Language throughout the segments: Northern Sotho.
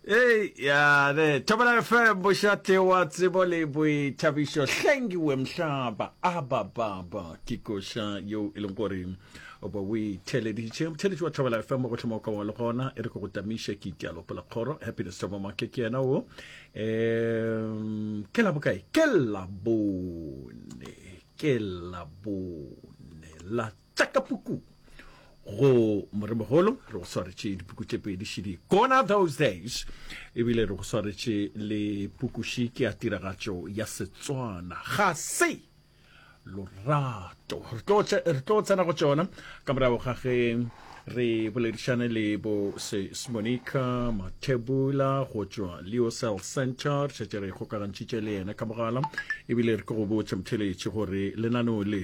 Hey, ya ne Thobela FM bošate wa tsebo le boithabišo hlengiwe mhlaba aba baba ke koša yeo e leng gore oba o itheleditše motheletši wa Thobela FM go hloma kwa le gona e re ko go tamiša ke itialo pela kgoro happiness thobo make ke yena o um ke la bokae ke la bone ke la bone la tša ka puku go moremogolo re go swaretše dipuku tše pedi šidi gona those days ebile re go swaretše le pukuši ke ya tiragatšo ya setswana ga se lorato re tlo tsena go tšona ka morago ga ge re boledišane le bo sesmonica mathebula go tšwa leo cell center šetše re kgokagantšhitše le yena ka mogala ebile re ke go botša motheletše gore lenaneo le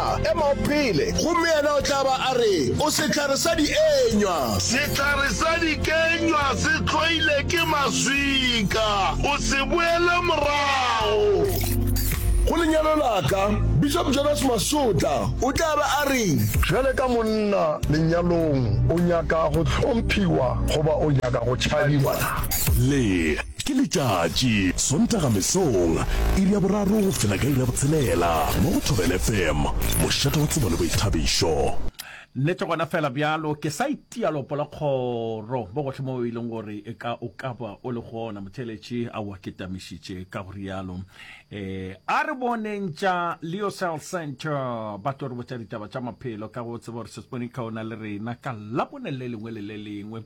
Monna, ema o phele! Gomme Yena o tla ba a re, O sehlare sa dikenywa! Sehlare sa dikenywa se hloile ke maswika. O se boele morago. Go lenyalo la ka, Bishop Jonas Masotla o tla be a re. Bjale ka monna lenyalong, o nyaka go hlomphiwa goba o nyaka go tšhabiwa na? Le. Ke letšatši, Sontaga mesong, iri ya boraro go fihla ka iri ya botshelela, mo go Thobela FM, mošate wa tsebo le boithabišo. Nnete gona fela bjalo, ke sa itia lopo la kgoro mo gohle mo e leng gore ka o ka ba o le gona, motheeletši a o aketamišitše ka go rialo. Ee, a re boneng tša Leocell Centre ba tlo re botša ditaba tša maphelo, ka ge o tseba gore Ses'bonikaona le rena ka Labone le lengwe le le lengwe.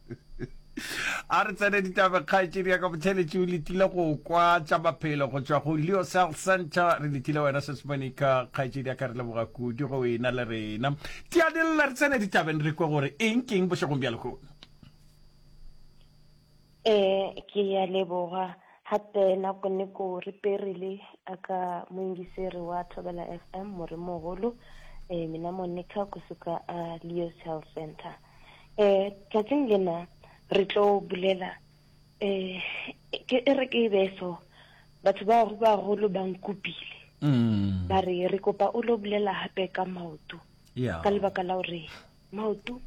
a re tsene ditabe kgaetšedi ya ka botheletši o letile go kwa tša maphelo go tšwa go leo cell center re letile wena sesmonika kgaetšedi ya ka re leboga kudu go ena le rena tianelela re tsene ditabeng re kwe gore eng keng bošegong bja lehono um ke ya leboga gape nako neko re perile a ka moingiseri wa thobela f m morimogolo um mina monica kusuka a leo cell center Eh, tšatšing lena re tlo bulela, eh, ke e re ke be so, batho ba go ba golo ba nkupile. Mm. Ba re re kopa o lo bulela hape ka maoto. Yeah. Ka lebaka la hore maoto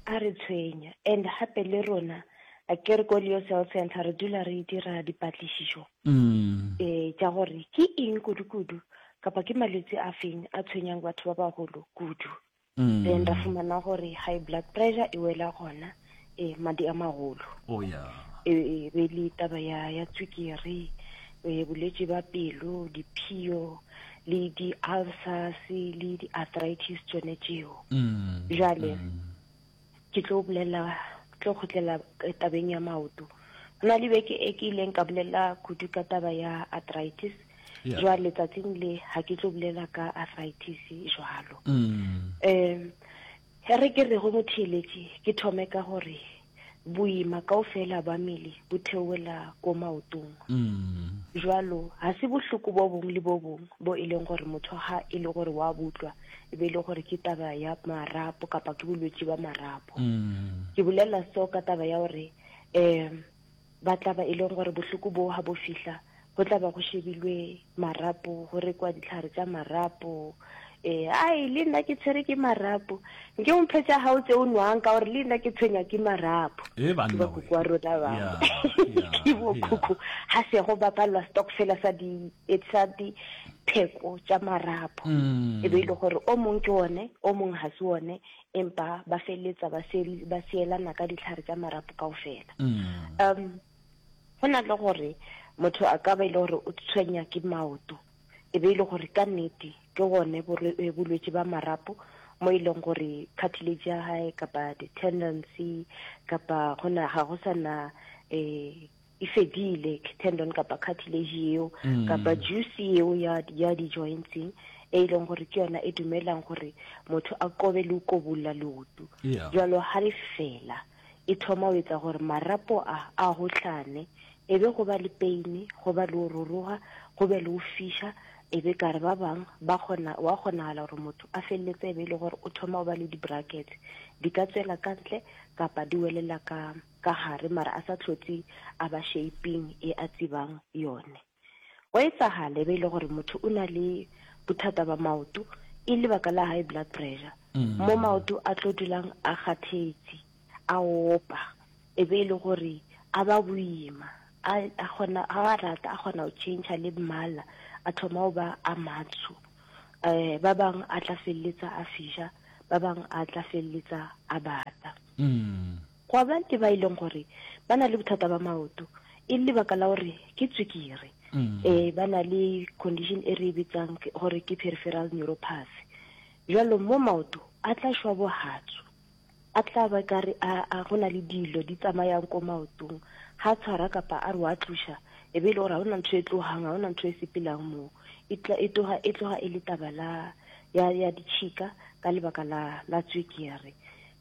a re tshwenya and hape le rona a ke re ko Leo Cell Center re dula re dira dipatlišišo mm. eh tša gore ke eng kudu-kudu kapa ke malwetse a feng a tshwenyang batho ba bagolo kudu mm. then ra fumana gore high blood pressure e wela gona e madi a magolo oh, yeah. e, e be le taba ya, ya tswikere e, bolwetse ba pelo diphio le di-ulcers le di-arthritis tsone tseo mm, jale mm. ke tlo bolela tlo khutlela eh, tabeng ya maoto go na le beke e ke ileng ka bolela kudu ka taba ya arthritis yeah. jwa letsatsing le ga ke tlo bolela ka arthritis jwalo um mm. he re ke re go motheeletše ke thome ka gore boima kao fela ba mele bo theowela ko maotong mm. jwalo ga se bohloko bo bongwe le bo bongwe bo e leng gore motho ga e le gore wa butlwa e be e le gore ke taba ya marapo kapa ke bolwetse ba marapo mm. ke bolela so ka taba ya gore um ba tla ba e leng gore bohloko boo ga bo fihla go tla ba go shebilwe marapo go rekwa ditlhare tsa marapo um ai le nna ke tshwere ke marapo nke omphetsa ga o tse o nwang ka gore le nna ke tshwenya ke marapo eh, bakoko wa rona ba ke bokhukhu ga sego ba palelwa stock fela sa di e tsa dipheko tša marapo mm. e be e le gore o mong ke one o mong ga se one empa ba feleletsa ba seelana ka ditlhare tša marapo kao fela mm. um go na le gore motho a ka ba e le gore o tshwenya ke maoto e be e le gore ka nnete ke gone eh, bolwetse ba marapo mo e leng gore cartilage ya gae kapa di-tendency kapa gona ga go sana um eh, e fedile tendon kapa cartilage yeo mm. kapa juice yeo ya, ya di-jointseng e e leng gore ke yona e dumelang gore motho a kobe le ukobolola leoto yeah. jalo ga le fela e thoma o etsa gore marapo a a gotlane e be go ba le paine go ba le o roroga go be le o fisha e be kare ba bangwe ba kgona wa kgonagala gore motho a feleletse e be e le gore o thoma o ba le di-brackets di ka tswela ka ntle kapa di welela ka ka gare mara a sa hlotse a ba shaping e a tsebang yone. Gwa etsagala e be e le gore motho o na le bothata ba maoto e lebaka la high blood pressure mm. mo maoto a tlo dulang a kgathetse a opa e be e le gore a ba boima a kgona a rata a kgona go change le mmala a thoma go ba a matsho eh ba bang a tla feleletsa a fisha ba bang a tla feleletsa a bata mm. Gwa ba le ba e leng gore ba na le bothata ba maoto e le lebaka la gore ke tswekere. Mm. Eh, ba na le condition e re e bitsang ke- gore ke peripheral neuropathy. Jalo mo maoto a tla šwa bohatsu, a tla ba kare a a go na le dilo di tsamayang ko maotong, ga tshwara kapa a re wa tloša e be e le gore ga ona ntho e tlogang, ga ona ntho e sepelang moo. E tla- e tloga e tloga e le taba la ya ya ditšhika ka lebaka la la tswekere.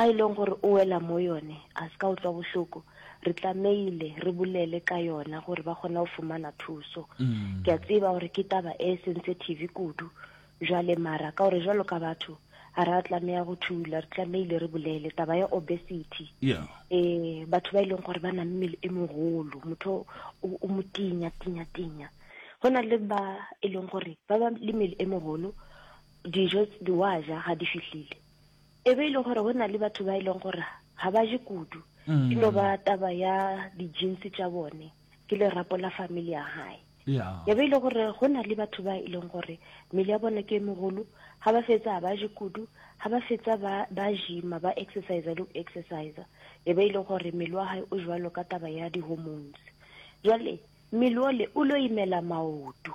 A e leng gore o wela mo yone, a se ka utlwa bohloko. Re tlameile re bolele ka yona gore ba kgone go fumana thuso. Ke a tseba gore ke taba e sensitive kudu jwale, mara ka gore jwalo ka batho ga ra tlameya go thula, re tlameile re bolele taba ya obesity. E, batho ba e leng gore ba na mmele e mogolo, motho o, o motinya, tinya, tinya. Go na le ba e leng gore ba ba le mmele e mogolo, dijo tse wa ja ga di fihlile. e be e le gore go na le batho ba e leng gore ga ba je kudu mm. e no ba taba ya di-jeans tša bone ke lerapo la family ya gae ya be e le gore go na le batho ba e leng gore mmele ya bone ke e mogolo ga ba fetsa ba je kudu ga ba fetsa ba jima ba exercise le go exercise e be e le gore mmele wa gae o jwalo ka taba ya di-hormones jwale mmele ole o lo imela maoto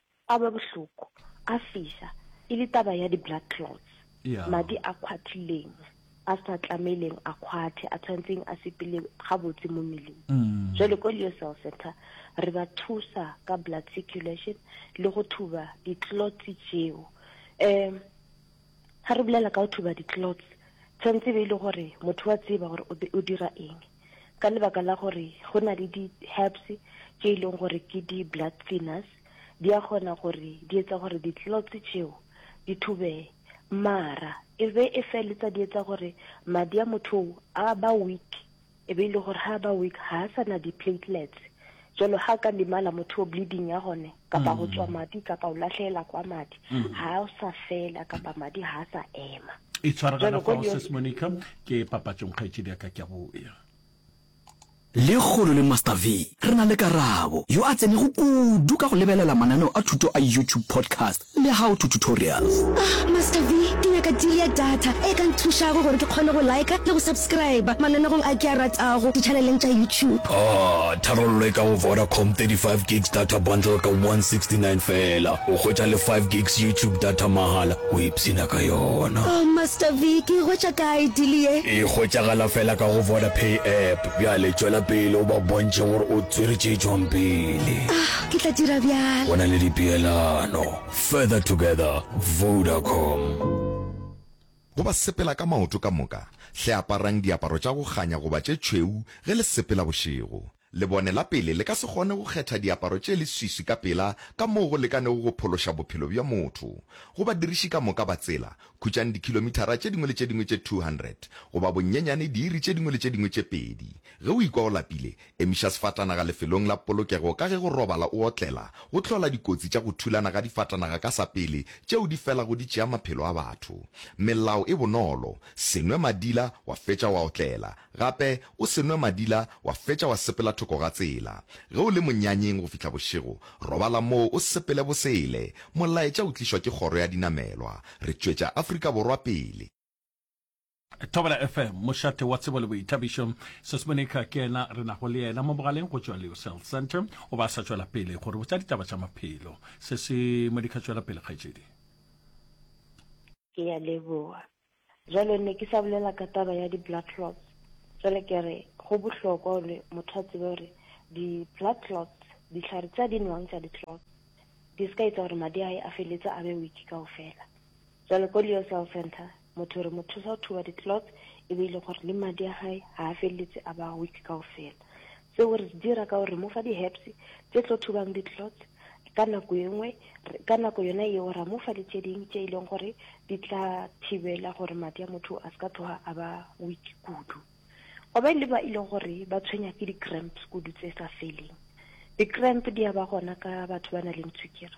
A ba bohloko, a fisa, e le taba ya di-blood clots, Yeah. madi a khwathileng, a sa tlameileng a khwathe, a tshwanetseng a sepele gabotse mo mmeleng. Mm. Jwale ko Leo Cell Center re ba thusa ka blood circulation le go thuba di-clots tšeo. Um Ga re bolela ka go thuba di-clothes, tshwanetse e be e le gore motho wa tseba gore o be o dira eng, ka lebaka la gore go na le di-herbs tše e leng gore ke di-blood thinners, di a kgona gore di etsa gore di-clothes tšeo di thubege, mara e be e feletsa di etsa gore madi a motho oo a ba weak. E be e le gore ha ba weak, ha a sa na di-platelets. Jwalo ha ka limala motho o bleeding ya gone, kapa go tšwa madi, kapa o lahlehela kwa madi, ha a sa fela, kapa madi ha a sa ema. Itshware gana fao, Sis Monica. Ke papatšong, kgaetšedi ya ka, ke a boya. Lekgolo le Master V, re na le Karabo, yo a tsenego kudu ka go lebelela mananeo a thuto a YouTube podcast Le how to tutorials. Ah Master V, ke nyaka deal ya data e ka nthušago gore ke kgone go liker le go subscriber mananegong a ke a ratago di-channeleng tša YouTube. Ah, tharollo e ka go Vodacom, 35 gigs data bundle ka 169 feela, o hwetša le 5 gigs YouTube data mahala, o ipshina ka yona. Oh Master V, ke e hwetša kae deal ye? E hwetšagala feela ka go Vodapay app. Bjale tšwela pele o ba bontšhe gore o tswere tše tšwang pele. Ah, Ke tla dira bjalo. Go na le dipeelano. Further together, Vodacom. Go ba sepela ka maoto ka moka, hle aparang diaparo tša go kganya goba tše tšhweu ge le sepela bošego. Lebone la pele le ka se kgone go kgetha diaparo tše leswiswi ka pela ka moo go lekanego go phološa bophelo bja motho. Go badiriši ka moka ba tsela, khutšang dikhilomithara tše dingwe le tše dingwe tše 200, goba bonyenyane diiri tše dingwe le tše dingwe tše pedi. Ge o ikwa o lapile, Emiša sefatanaga lefelong la polokego ka ge go robala o otlela go hlola dikotsi tša go thulana ga difatanaga ka sa pele tšeo di felago di tšea maphelo a batho. Melao e bonolo, Se nwe madila wa fetša wa otlela. Gape, o se nwe madila wa fetša wa sepela thoko ga tsela. Ge o le monyanyeng go fihla bošego, robala moo o sepele bosele. Molaetša o tlišwa ke Kgoro ya Dinamelwa. Re tšwetša Afrika Borwa pele. thobela fm mošate wa tsebo le boithabišo sesmonica ke ena re nago le yena mo mogaleng go tšwa leo cell center o ba sa tšwela pele gore botsa ditaba tša maphelo se se modika tšwela pele kgaetšedi ke ya leboa jalo ne ke sa bolela ka taba ya di-blood clots jalo ke re go bohlokwa gore motho a tsebe gore di-blood clots ditlhare tsa di nwang tsa di-clots di se ka etsa gore madi a e a feletse a be weak kao fela jalo ko leo cell center Motho re mo thusa go thuba di-clots e be e le gore le madi a gae ga a feleletse a ba a weak kao fela. Seo re se dira ka gore re mo fa di-herbs tse tlo thubang di-clots ka nako e nngwe ka nako yona eo ra mo fa le tše ding tše e leng gore di tla thibela gore madi a motho a se ka tloga a ba weak kudu go ba le ba e leng gore ba tshwenya ke di-cramps kudu tse sa feleng di-cramp di ya ba gona ka batho ba na leng tshwikere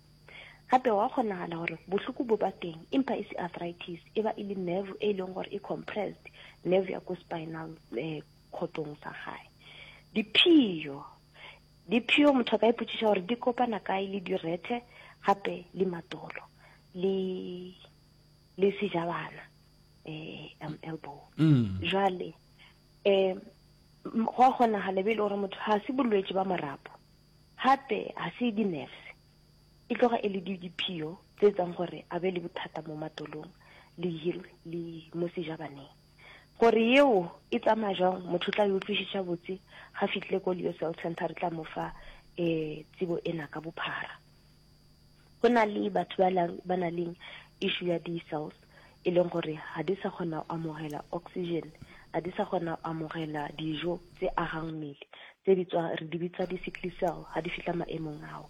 Gape gwa kgonagala gore bohloko bo ba teng empa e se arthritis, e ba e le nerve e leng gore e compressed, nerve ya ko spinal eh, khotong sa gae. Diphio, diphio motho a ka ipotšiša gore di kopana kae le direthe gape le matolo le le sejabana eh, um, elbow. Mm. Jwale eh, m- gwa kgonagala be e le gore motho ga se bolwetši ba morapo Gape ga se dinefse, e tloga e le di diphio tse etsang gore a be le bothata mo matolong le hirwe le mo sejabaneng. Gore yeo e tsamaya jwang motho o tla e utlwišiša botse ga fitlile ko Leo Cell Centre re tla mo fa um tsebo ena ka bophara. Go na le batho ba lang ba na leng issue ya di cells e leng gore ga di sa kgona go amogela oxygen ga di sa kgona go amogela dijo tse agang mmele tse di tswa re di bitsa di sickly cell ga di fihla maemong ao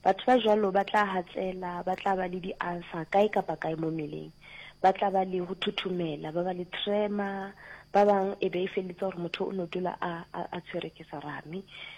batho ba jalo ba tla hatsela ba tla ba le di ulcer kae kapa kae mo mmeleng ba tla ba le go thuthumela ba ba le trema ba bang e be e feletse gore motho o no dula a a tshwere ke sarame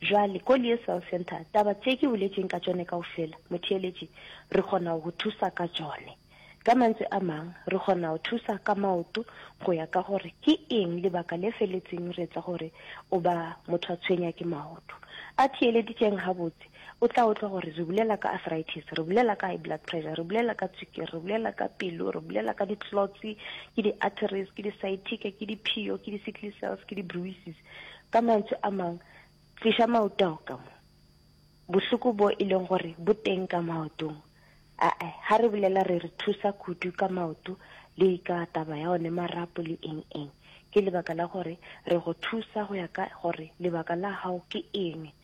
Bjale, ko Liesel Center, taba tše ke boletšeng ka tšone kaofela, motheeletši, re kgona go go thusa ka tšone. Ka mantšu a mang, re kgona go thusa ka maoto go ya ka gore ke eng lebaka le feletseng re etsa gore o ba motho a tshwenya ke maoto. A theeleditšeng gabotse, o tla utlwa gore re bolela ka arthritis, re bolela ka high blood pressure, re bolela ka tswikiri, re bolela ka pelo, re bolela ka di-clots, ke di-arteries, ke di-sciatica, ke diphio, ke di-sickly cells, ke di-bruises. Ka mantšu a mang, tliša maoto ao ka mo. Bohloko bo e leng gore bo teng ka maotong. A-a, ha re bolela re re thusa kudu ka maoto le ka taba ya one marapo le eng-eng. Ke lebaka la gore re go thusa go ya ka gore lebaka la hao ke eng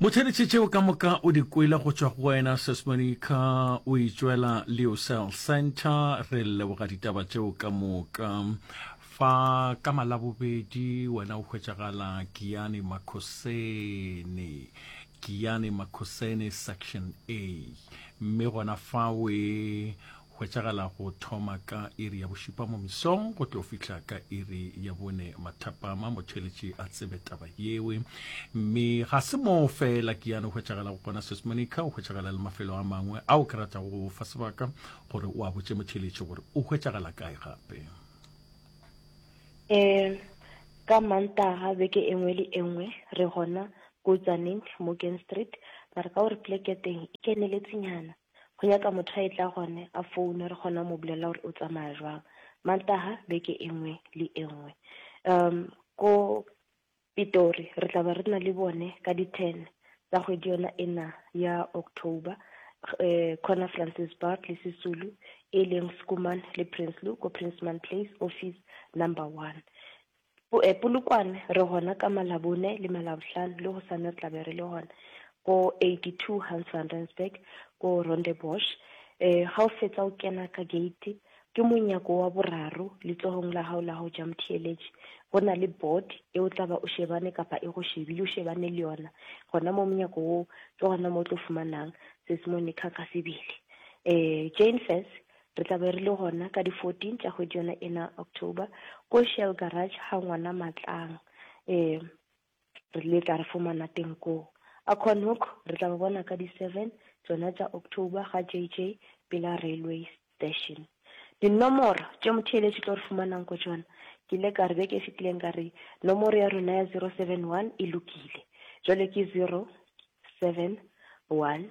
Motheletše tšeo ka moka o di kwele go tšwa go wena, Ses Monica, o e tšwela Leocell Centre. Re leboga ditaba tšeo ka moka. Fa ka Malabobedi wena o hwetšagala Giyani Makhoseni, Giyani Makhoseni Section A, mme gona fawe hwetšagala go thoma ka iri ya bošupa mo mesong go tlo fihla ka iri ya bone mathapama motheletši a tsebe taba yewe mme ga se moo fela ke yane hwetšagala go kona sesmonica o hwetšagala le mafelo a mangwe ao ke ratago go fa sebaka gore o a botse motheletši gore o hwetšagala kae gape um ka mantaga beke e nngwe le e nngwe re gona kotsaneng morgan street mara ka gore pleke teng e keneletsengnyana Go nyaka motho a etla gone a foune re kgona mo bulela gore o tsamaya jwang Mantaha beke e nngwe le e nngwe. Um ko Pitori re tla be re na le bone ka di ten tsa kgwedi yona ena ya October um khona Francis Bart le Sisulu e leng Schoeman le Prinsloo ko Princeman Place office number one. Polokwane re gona ka Malabone le Malabohlano le gosane re tla be re le gona ko 82 Hans van Rensburg ko Rondebosch. Ga o fetsa o kena ka gate ke monyako wa boraro letsogong la gago la go ja motheeletši go na le board e o tla ba o shebane kapa e go shebile o shebane le yona gona mo monyako wo ke gona mo o tlo fumanang Seesimane Kgakgasebele. Jane Fess Re tla be re le gona ka di 14 tša kgwedi yona ena, October, ko Shell Garage ga ngwana Matlang. Ee, re le tla re fumana teng koo. A Conhoek re tla ba bona ka di 7 tšona tša October ga JJ pela railway station. Dinomoro tše motheeletši tlo re fumanang ko tšona, ke ile ka re beke e fetileng ka re nomoro ya rena ya 071 e lokile. Jwale ke 071.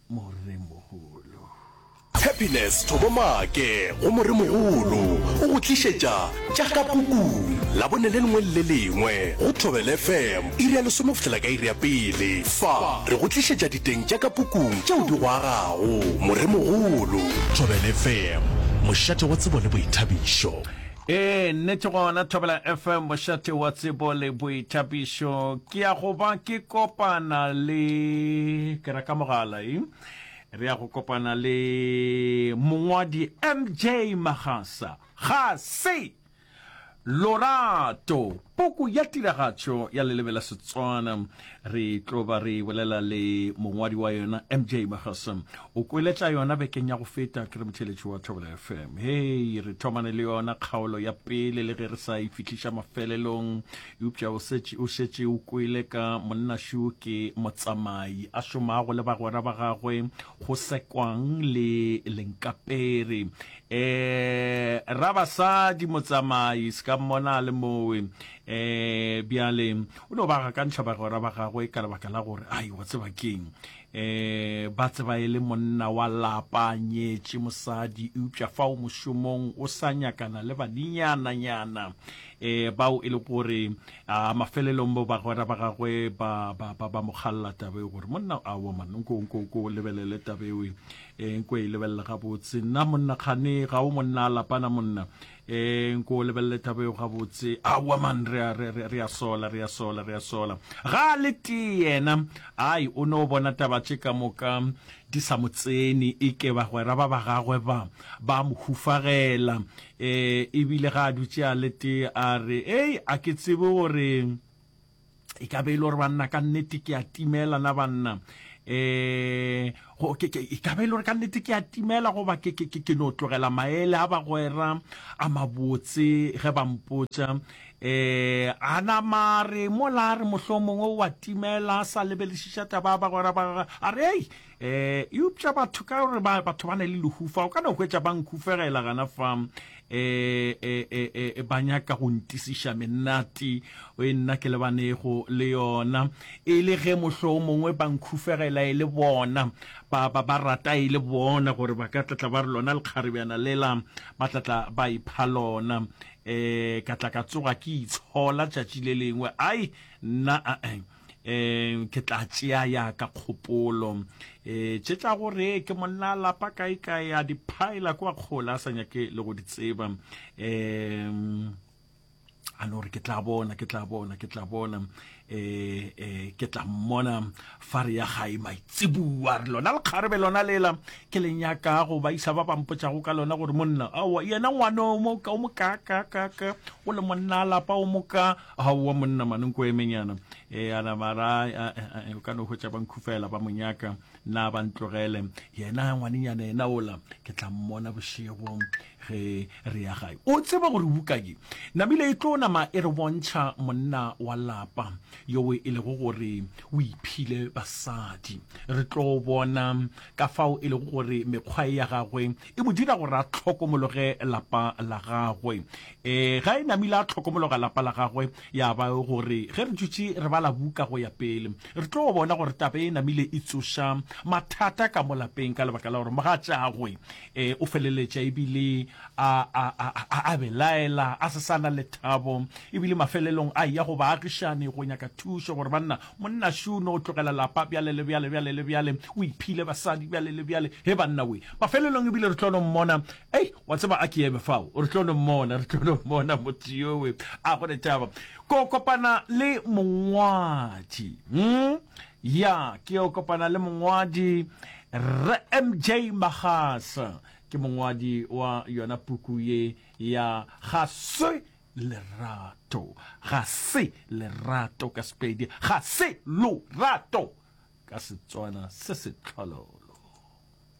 Moremogolo. Tshepiness Thobo Maake go Moremogolo o go tlišetša Tša Ka Pukung, Labone le lengwe le le lengwe go Thobela FM, iri ya lesome go fihla ka iri ya pele. Fa re go tlišetša diteng tša ka pukung tšeo di go agago. Moremogolo. Thobela FM, mošate wa tsebo le boithabišo. Ee, nnete gona Thobela FM, mošate wa tsebo le boithabišo. Ke ya go ba ke kopana le ke reka mogala e re ya go kopana le mongwadi MJ Magasa. Ga se Lorato. Poko ya tiragatšo ya leleme la Setswana re tlo ba re bolela le mongwadi wa yona MJ Magasa. O kwele tša yona bekeng ya go feta, ke re motheeletši wa Thobela FM. Hei, re thomane le yona kgaolo ya pele le ge re sa e fihliša mafelelong, eupša o šetše o šetše o kwele ka monnašu ke motsamai a šomago le bagwera ba gagwe go sekwang le lenkapere Eeh rabasadi motsamai se ka mmona a le mowe eeh bjale o no ba gakantšha bagwera ba gagwe ka lebaka la gore ai wa tseba keng eeh ba tseba e le monna wa lapa nyetše mosadi eupša fa o mošomong o sa nyakana le baninyana nyana eeh bao e le gore a mafelelong bo bagwera ba gagwe ba ba ba ba mo galla tabeo gore monna a woman nko nko nko lebelele tabeo E, nko e lebelele gabotse nna monna kgane ga o monna a lapana monna e, nko o lebelele taba eo gabotse aowa man re a- re- re- re a sola re a sola re a sola ga a le tee yena ai o no bona taba tše ka moka di sa mo tsene e ke bagwera ba ba gagwe ba ba mo hufagela um ebile ga a dutše a le tee a re ei a ke tsebe gore e ka be e le gore banna ka nnete ke a timela na banna um e ka be e le gore ka nnete ke a timela goba ke no tlogela maele a bagwera a mabotse ge ba mpotsa um eh, a nama re mola re mohlomongwe wa timela a sa lebelešiša taba ya bagwera ba a re ei E, eupša batho ka gore ba batho ba na le lehufa o ka no hwetša ba nkhufegela gana fa e, e, e, e, e ba nyaka go ntisiša menati o e nna ke lebanego le yona e le ge mohlo o mongwe ba nkhufegela e le bona ba ba ba rata e le bona gore ba ka tlatla ba re lona lekgarebjana lela ba tlatla ba ipha lona e ka tla ka tsoga ke itshola tšatši le lengwe ai nna a um ke tla tšea ya ka kgopolo um tše tša gore ke monna lapa kae kae a diphaela kwa kgola a sa nyake le go di tseba um a no re ke tla bona ke tla bona ke tla bona um um ke tla mmona fa re ya gae maitsebua re lona lekgarebe lona lela ke le nyaka go ba isa ba bampotšago ka lona gore monna aowa yena ngwane o mo kaaka o le monna lapa o moka Aowa monna mane nko emenyana. E, a nama ra, a, a, o ka no hwetša ba nkhufela, ba mo nyaka, na ba ntlogele. Yena ngwanenyana yena ola, ke tla mmona bošego ge re ya gae. O tseba gore bukanye namile e tlo nama e re bontšha monna wa lapa yowe e lego gore o iphile basadi. Re tlo bona ka fao e lego gore mekgwa e ya gagwe e mo dira gore a hlokomologe lapa la gagwe. E, ga e namile a tlhokomologa lapa la gagwe, ya ba gore ge re dutše re bala buka go ya pele, re tlo bona gore taba e namile e tsoša mathata ka mo lapeng ka lebaka la gore mogatšagwe e, o feleletša ebile a, a, a, a, a belaela, a se sa na lethabo, ebile mafelelong a ya go baagišani go nyaka thušo gore banna, monna Šuno o tlogela lapa bjale le bjale, bjale le bjale, o iphile basadi bjale le bjale. He banna we! Mafelelong ebile re tlo no mmona Ei, wa tseba a ke eme fao re tlo no mmona re tlo no mmona motho yowe a go letaba ko kopana le mongwadi mm? ya ke yo kopana le mongwadi re mj magasa ke mongwadi wa yona puku ye ya ga se lerato ga se lerato ka sepedi ga se lorato ka setswana se setlhololo